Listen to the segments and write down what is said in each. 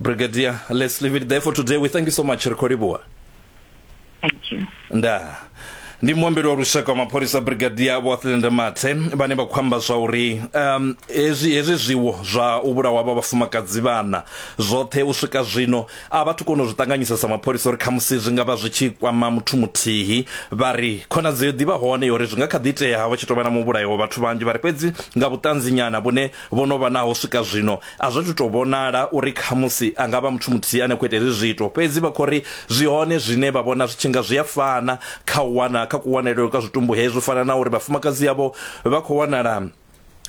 brigadier let's leave it there for today we thank you so much ri khou livhuwa thank you ndaa ndi muambeli wa lushaka wa mapholisa brigadier vhoathlende mathe vhane vha khou amba zwa uri um hezwi hezwi zwiwo zwa u vhulawa vha vhafumakadzi vhana zwoṱhe u swika zwino a vhathu kona u zwi ṱanganyisa sa mapholisa uri khamusi zwi nga vha zwi tshi kwama muthu muthihi vha ri khonadzeo ḓivha hone uri zwi nga kha ḓi itea vha tshi tou vha na muvhulayo wa vhathu vhanzhi vha ri fhedzi nga vhuṱanzinyana vhune Vho no vha naho swika zwino a zwo athu tou vhonala uri khamusi a nga vha muthu muthihi ane a khou ita hezwi zwiito, fhedzi vha khou ri zwi hone zwine vha vhona zwi tshi nga zwi a fana kha u wana kha kuwanalele kwa zwitumbu hezwi, u fana na uri vhafumakadzi avho vha khou wanala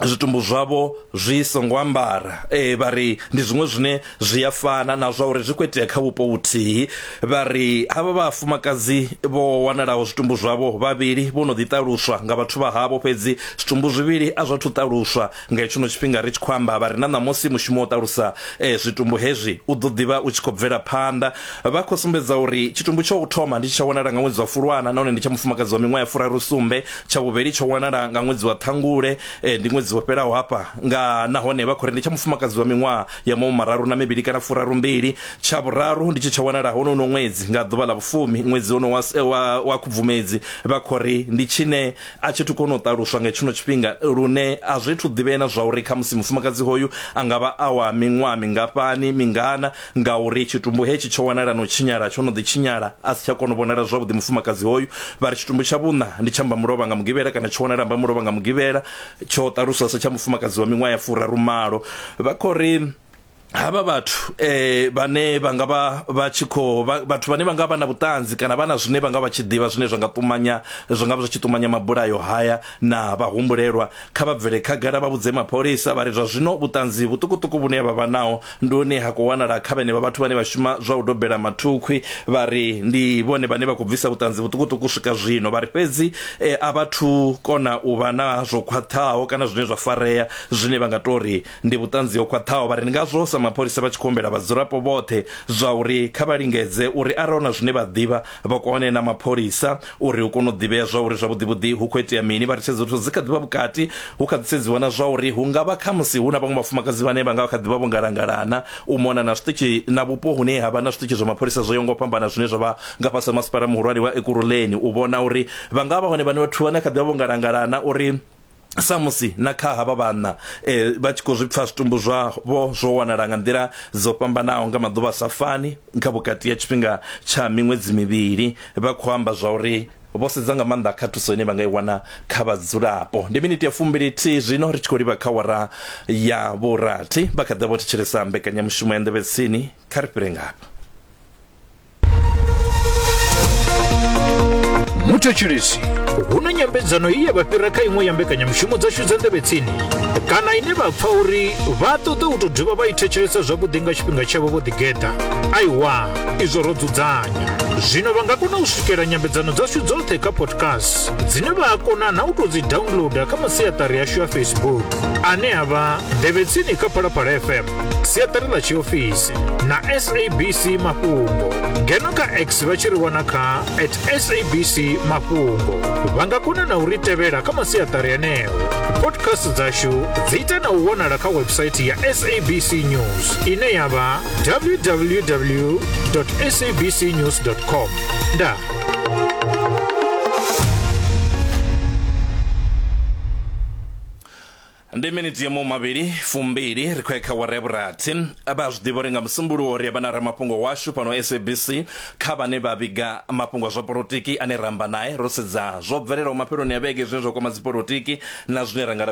zwitumbu zwavho zwi songo ambara. Ee, vha ri ndi zwiṅwe zwine zwi a fana na zwa uri zwi khou itea kha vhupo vhuthihi vha ri havha vhafumakadzi vho wanalaho zwitumbu zwavho vhavhili vho no ḓiṱaluswa nga vhathu vha havho fhedzi zwitumbu zwivhili a zwa thu ṱaluswa nga hetsho no tshifhinga ri tshi khou amba vha ri na ṋamusi mushumo wo ṱalusa eh, zwitumbu hezwi u ḓo ḓivha u tshi khou bvela phanḓa vha khou sumbedza uri tshitumbu tsho u thoma ndi tsha wanala nga ṅwedzi wa fulwana nahone ndi tsha mufumakadzi wa miṅwaha ya furaru sumbe tsha vhuvhili tsho wanala nga ṅwedzi wa ṱhangule eh, ndi ṅwedzi wo fhelaho hafha nga nahone vha khou ri ndi tsha mufumakadzi wa miṅwaha ya maṅwe mararu na mivhili kana furarumbili tsha vhuraru ndi tshi tsha wanala hono no ṅwedzi nga ḓuvha ḽa vhufumi ṅwedzi hono wa, eh, wa, wa khubvumedzi vha khori ndi tshine a tshi thu kona u ṱaluswa nga tshino tshifhinga lune a zwi thu ḓivhea na zwa uri kha musi mufumakadzi hoyu a nga vha a wa miṅwaha mingafhani mingana nga uri tshitumbu hetshi tsho wanala no tshinyala tsho no ḓi tshinyala a si tsha kona u vhonala zwavhuḓi mufumakadzi hoyu vha ri tshitumbu tsha vhuṋa ndi tsha mbamulovha nga mugivhela kana tsho wanala mbamulovha nga mugivhela tsho ṱaluswa sa tsha mufumakadzi wa miṅwaha ya furaru malo vha khou ri havha vhathu eh vhane vha nga vha vha tshi kho vhathu vhane vha nga vha na vhuṱanzi kana vha na zwine vha nga vha tshi ḓivha zwine zwa nga ṱumanya zwi nga vha zwi tshi ṱumanya mabulayo haya na vha humbulelwa kha vha bvele khagala vha vhudze mapholisa vha ri zwa zwino vhuṱanzi vhuṱukuṱuku vhune vha vha naho Ndi hune ha khou wanala kha vhenevha vhathu vhane vha shuma zwa u dobela mathukhwi vha ri ndi vhone vhane vha khou bvisa vhuṱanzi vhuṱukuṱuku swika zwino. Vha ri fhedzi a vha thu kona u vha na zwo khwaṱhaho kana zwine zwa farea zwine vha nga tou ri ndi vhuṱanzi ho khwaṱhaho. Vha ri ndi ngazwo sa mapholisa vha tshi khou humbela vhadzulapo vhoṱhe zwa uri kha vha lingedze uri arali hu na zwine vha ḓivha vha kone na mapholisa uri hu kone u ḓivhea zwa uri zwavhuḓivhuḓi hu khou itea mini vha ri tshedzo zwithu dzi kha ḓivha vhukati hu kha ḓi sedziwa na zwa uri hu nga vha kha musi hu na vhaṅwe vhafumakadzi vhane vha nga kha ḓivha vho ngalangalana u mona na zwiṱitshi na vhupo hune ha vha na zwiṱitshi zwa mapholisa zwo yongo fhambana zwine zwa vha nga fhasi ha masipala muhulwane wa ekuruleni u vhona uri vha nga vha hone vhane vhathu vhane kha ḓivha vho ngalangalana uri samusi na kha havha vhanna eh, vha tshi khou zwi pfa zwitumbu zwavho zwo wanala nga nḓila dzo fhambanaho nga maḓuvha sa fani kha vhukati ya tshifhinga tsha miṅwedzi mivhili vha khou amba zwa uri vho sedza nga maanḓa kha thuso ine vha nga i wana kha vhadzulapo ndi miniti ya fumbili thihi zwino ri tshi khou livha kha wara ya vhurathi vha kha ḓa vho thetshelesa mbekanyamushumo ya nḓevhetsini kha ri fhire ngafha muthetshelesi hu na nyambedzano i ya vha fhira kha iṅwe ya mbekanyamushumo dzashu dza ndevhetsini kana ine vha pfa uri vha ṱoḓa u tou dovha vha i thetshelesa zwavhuḓi nga tshifhinga tshavho vho ḓigeḓa aiwa izwo ro dzudzanya zwino vha nga kona u swikela nyambedzano dzashu dzoṱhe kha podcast dzine vha a kona na u tou dzi downloader kha masiaṱari ashu a facebook ane a vha ndevhetsini kha phalaphala fm siaṱari ḽa tshiofisi na sabc mafhungo ngeno kha x vha tshi ri wana kha at sabc mafhungo vha nga kona na u ri tevhela kha masiaṱari eneo podcast dzashu dzi ita na u wanala kha website ya sabc news ine ya vha www sabc news com ndaa Ndi minitsi ya mahumavhili fumbili ri khou ya kha awara ya vhurathi. Vha a zwi ḓivha uri nga Musumbuluwo ri a vha na ramafhungo washu fhano SABC. Kha vhane vha vhiga mafhungo a zwa polotiki ane ra amba nae, ro sedza zwo bvelelaho mafheloni a vhege zwine zwa kwama dzipolotiki na zwine ra nga lavhelela.